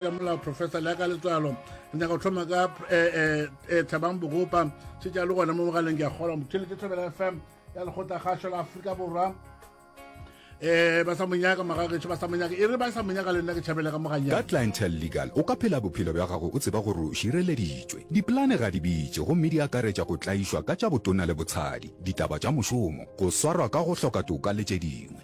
ya molao professor le ya ka letswalo re nyaka go tlhoma ka um eh, eh, eh, thabang bogopa šetša le gona mo mogaleng ke a kgolwa mothelete thobela fm ya lekgotla kgašo la aforika borwa um ba sa monyaka magagetšo ba sa monyaka e re ba sa monyaka le nna ke tšhabele ka moganya ka clientele legal o ka phela bophelo bja gago o tseba gore o šireleditšwe dipolane ga di bitše gomme di akaretša go tlaišwa ka tša botona le botshadi ditaba tša mošomo go swarwa ka go hloka toka le tše dingwe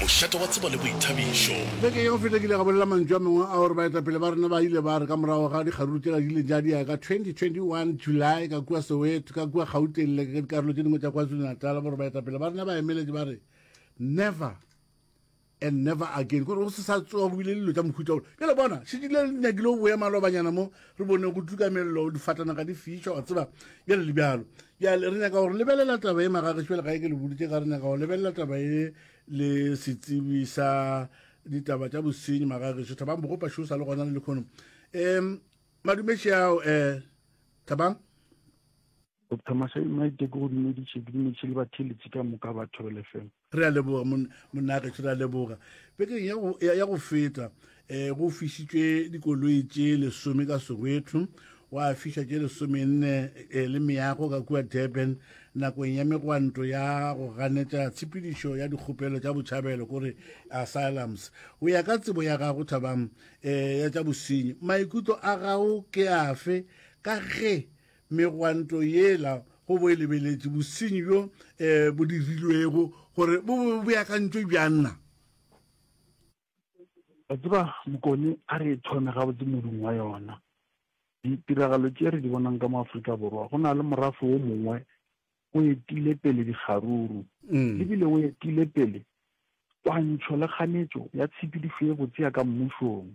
Mošate wa tsebo le boithabišo. Beke ya go feta ke ile ka bolela mantšu a mangwe a gore baetapele ba rena ba ile ba re ka morago ga dikgaruru tšela di ileng tša diega ka 2021 July ka kua Soweto, ka kua Gauteng le ka dikarolo tše dingwe tša KwaZulu-Natal gore baetapele ba rena ba emeletše ba re never and never again gore go se sa tsoga go bile le dilo tša mohuta wo. Bjale bona, šetše le nyakile go boya malobanyana mo re bone go tluka mello difatanaga di fiša wa tseba bjale le bjalo bjale re nyaka gore lebelela taba e magage šebele ga e ke le boditše ka re nyaka go lebelela taba e le setsibi sa ditaba tša bosenyi magageso thabang bogopa šo sa le gona le lekgono um madumeši ao um thabang doctor masai maite ke go dumediše ke dumediše le batheletsi ka moka ba thobele fela re a leboga monnageso re a leboga bekeng ya go feta um go fišitšwe dikoloi tše lesome ka soweto wa fiša tše lesomenne um le meago ka kua durban nakong ya megwanto ya go ganetša tshepedišo ya dikgopelo tša botšhabelo kore asylums go ya ka tsebo ya gago thabang um ya tša bosenyi maikutlo a gago ke afe ka ge megwanto yela go bo e lebeletše bosenyi bjo um bo dirilwego gore bo bo beakantšwe bjanna tseba mokone a re thome gabotse modung wa yona ditiragalo tše re di bonang ka mo aforika borwa go na le morafe wo mongwe o etile pele dikgaruru mm. ebile o etile pele twantšho le kganetšo ya tshepedišo ye botse ya ka mmušong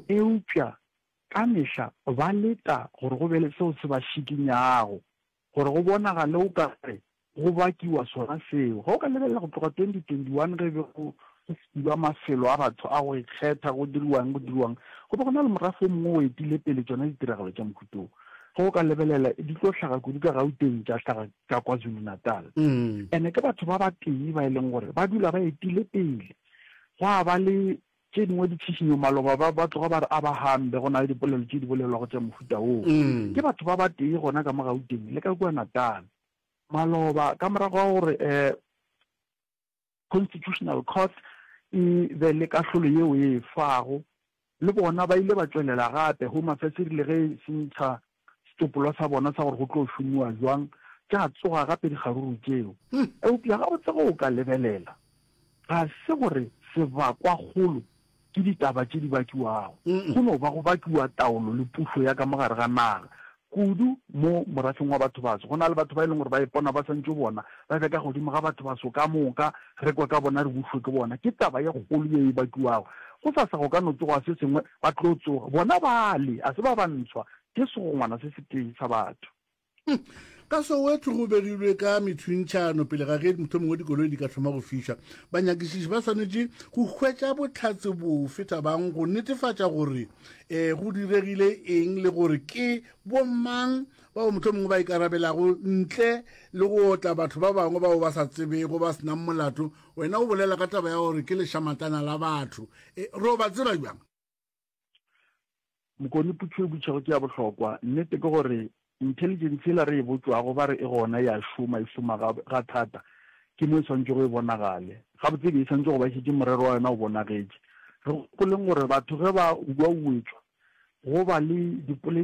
Eupša ka mehla ba leta gore go be le seo se ba šikinyago, gore go bonagale o ka re go bakiwa sona seo. Ga o ka lebelela go tloga 2021 ge e be go filwa mafelo a batho a go ikgetha go diriwang go diriwang, go be go na le morafe o mongwe o etile pele tšona ditiragalo tša mohuta wo. Ge o ka lebelela di tlo hlaga kudu ka Gauteng tša hlaga ka KwaZulu-Natal. And-e ke batho ba batee ba e leng gore ba dula ba etile pele. Gwa ba le Tše dingwe di tšhišinyo maloba ba ba tloga ba re a ba hambe go na le dipolelo tše di bolelwago tša mohuta woo ke batho ba ba tee gona ka mo Gauteng le ka kua Natal. Maloba ka morago ga gore um Constitutional Court e be le kahlolo yeo e e fago, le bona ba ile ba tšwelela gape Home Affairs e rile ge e se ntsha Setsopolwa sa bona sa gore go tlo šomiwa bjang tša tsoga gape dikgaruru tšeo. Eupša gabotse ge o ka lebelela, ga se gore sebakwakgolo ke ditaba tše di bakiwago. Go no ba go bakiwa taolo le pušo ya ka mo gare ga naga, kudu mo morafeng wa bathobaso. Go na le batho ba e leng gore ba ipona ba swantšwe bona ba be ka godimo ga bathobaso ka moka, re kwe ka bona, re bušwe ke bona. Ke taba ye kgolo ye e bakiwago. Gosasa go ka no tsoga se sengwe Ba tlo tsoga, bona bale, a se ba bantshwa, ke segongwana se setee sa batho. Ka Soweto go begilwe ka methwintšhano pele ga ge mohlomong wa dikoloi di ka thoma go fiša. Banyakišiši ba swanetše go hwetša bohlatse bofe thabang go netefatša gore e go diregile eng le gore ke bomang bao mohlomong ba ikarabelago ntle le go otla batho ba bangwe bao ba sa tsebego ba senang molato Wena o bolela ka taba ya gore ke lešamatana la batho. E, re o ba tseba bjang? Mokone putšo e butšhago ke ya bohlokwa. Nnete ke gore intelligence yela re e botšwago ba re e gona ya šoma e šoma ga, ga thata ke mo e swantšwe go e bonagale gabotse be e swantšwe go ba šetše morero wa yona o bonagetše re gopoleng gore batho ge ba uauetswa go ba le dipoledi